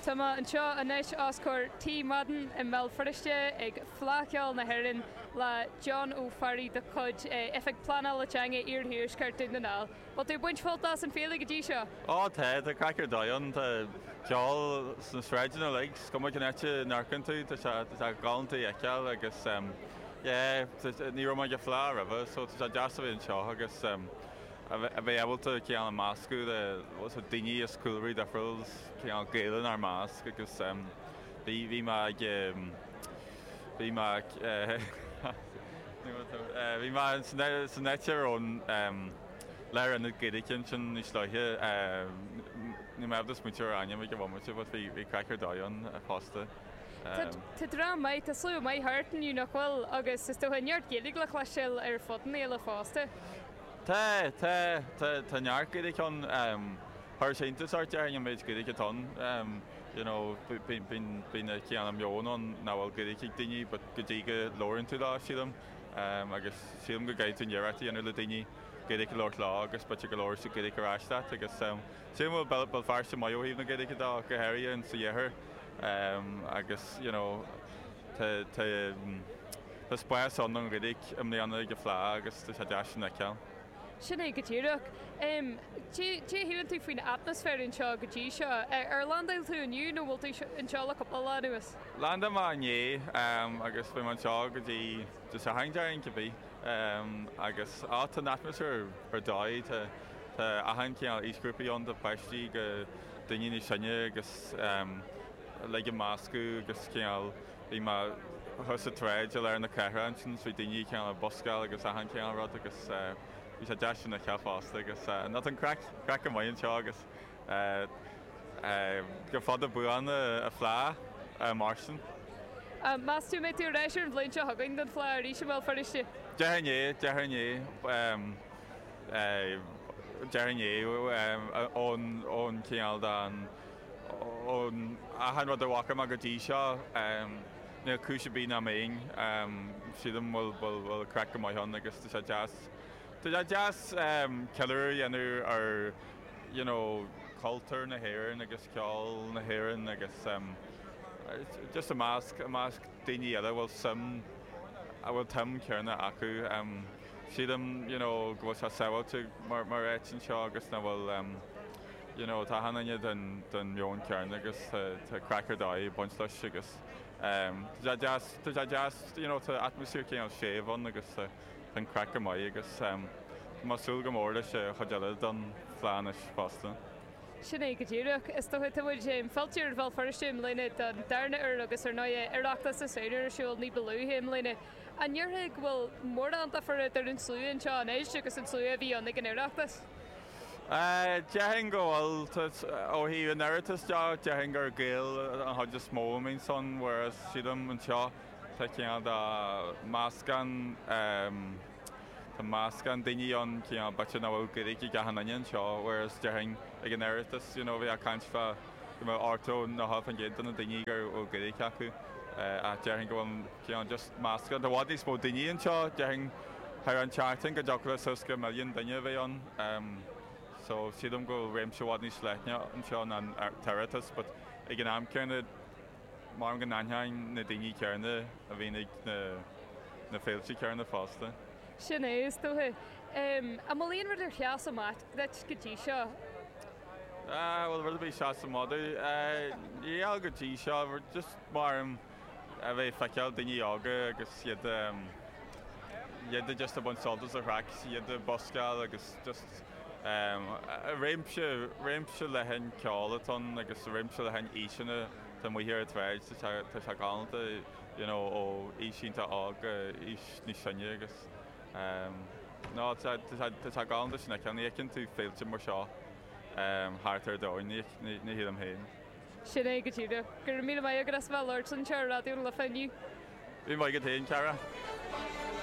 Tá mé anseo anois os comhair Tí Madden i mBéal Feirste ag Fleadh Cheoil na hÉireann le John Ó Fearraigh de chuid Oifig Phleanála Teanga Iarthuaisceart Dhún na nGall. Bhfuil tú ag baint sult as an Fhéile go dtí seo? Ó tá, tá craic ar dóigh ann, tá ceol sna sráideanna uilig, is cuma cén áit a n-amharcann tú, tá sé, tá sé galánta a fheiceáil agus yeah, ní raibh mé ag an Fhleadh roimhe so tá sé deas a bheith anseo agus. a bheith ábalta cineál an meascadh le daoine as cúlraí difriúla is cineál Gaeil inár measc agus bhí mé ag bhí mé ag bhí mé san áit ar an lárionad Gaeilge ansin níos luaithe, níl mé ábalta smaointiú ar ainm ag an bhomaite but bhí bhí craic ar dóigh ann fosta. Tá dream maith, tá slua maith thart inniu nach bhfuil agus is dócha neart Gaeilge le cloisteáil ar fud na féile fosta. Tá, tá, tá, tá neart Gaeilge ann. Chuir sé iontas ort déarfainn an méid Gaeilge atá ann. You know bíonn an cineál meon ann nach bhfuil Gaeilge ag daoine but go dtí go labhraíonn tú leo sílim agus sílim go gcaithfidh tú an iarracht a dhéanamh le daoine Gaeilge a labhairt leo agus b'fhéidir go labhróidh siad Gaeilge ar ais leat agus sílim go bhfuil Béal Feirste maith ó thaobh na Gaeilge de go háirithe ins an iarthar agus you know tá, tá. Tá spás ann don Ghaeilge i mbliana ag an Fhleadh agus tá sé deas sin a fheiceáil. Sin é go díreach. Caidé a shíleann tú faoin atmaisféar anseo go dtí seo? Ar landáil tú inniu nó bhfuil tú anseo le cúpla lá anuas? Landáil mé inné agus beidh mé anseo go dtí Dé Sathairn déarfainn cibé. Agus á tá an atmaisféar ar dóigh, tá achan chineál aoisghrúpaí ann ó pháistí go daoine níos sine agus uilig ag meascadh agus cineál, bhí mé thuas sa tsráid i lár na cathrach ansin is bhí daoine ag cineál buscáil agus achan chineál rud agus bhí sé deas sin a fheiceáil fosta agus no tá an craic craic go maith anseo agus gura fada buan an Fhleadh mar sin. Meas tú an mbeidh tú ar ais ar an bhliain seo chugainn don Fhleadh arís i mBéal Feirste? Déarfainn é, déarfainn é, déarfainn é ón ón cineál den, ón achan rud a bhfaca mé go dtí seo níl cúis ar bith nach mbeinn, sílim bhfuil bhfuil craic go maith ann agus tá sé deas, tá sé deas ceiliúradh a dhéanamh ar you know cultúr na hÉireann agus ceol na hÉireann agus just i measc, i measc daoine eile a bhfuil suim, a bhfuil an tsuim chéanna acu. Sílim you know go bhfuil sé sábháilte mar áit anseo agus nach bhfuil. You know, tá achan duine den mheon céanna agus tá craic ar dóigh ag baint leis agus tá sé deas, tá sé deas, you know, tá atmaisféar cineál séimh ann agus tá an craic go maith agus tá mé ag súil go mór leis an chuid eile den Fhleadh anois fosta. Sin é go díreach. Is dócha tá muid fillte ar Bhéal Feirste i mbliana don darna uair agus ar ndóigh Oireachtas na Samhna ar siúl ní ba luaithe i mbliana. An ndéarfá go bhfuil mórán difear idir an slua anseo anois agus an slua a bhí ann ag an Oireachtas? Déarfainn go bhfuil. Ó thaobh an Oireachtais de déarfainn gur Gaeil an chuid is mó a bhíonn ansin whereas sílim anseo tá cineál de meascán, tá meascán daoine ann cineál b'fhéidir nach bhfuil Gaeilge ag achan duine anseo whereas déarfainn ag an Oireachtas you know bhí a' caint fá go mbeadh 80, 90% de na daoine go raibh Gaeilge acu ach déarfainn go bhfuil cineál just meascán, tá i bhfad níos mó daoine anseo déarfainn thar an tseachtain go dtiocfadh le suas go milliún duine a bheith ann em so sílim go bhfuil réimse i bhfad níos leithne anseo ná an tOireachtas but ag an am céanna maram go n-aithneoinn na daoine céanna a bhíonn ag na na féilte céanna fosta. Sin é, is dócha. Em, an bhfuil aon rud ar sheas amach duit go dtí seo? Bhuel, rud ar bith a sheas amach domh, cineál go dtí seo, just maram a bheith ag feiceáil daoine óga agus iad iad just ag baint sult as an chraic, iad ag buscáil agus just réimse, réimse leathan ceoil atá ann agus réimse leathan aoiseanna atá amuigh ar an tsráid, so tá sé galánta, you know, ó aois iontach óg go aois níos sine agus. You know tá sé galánta sin a fheiceáil. Ní fheiceann tú féilte mar seo thart ar an domhan, ní shílim féin. Sin é go díreach. Go raibh míle maith agat as bheith ag labhairt anseo ar Raidió na Life inniu. Go raibh maith agat féin, a chara.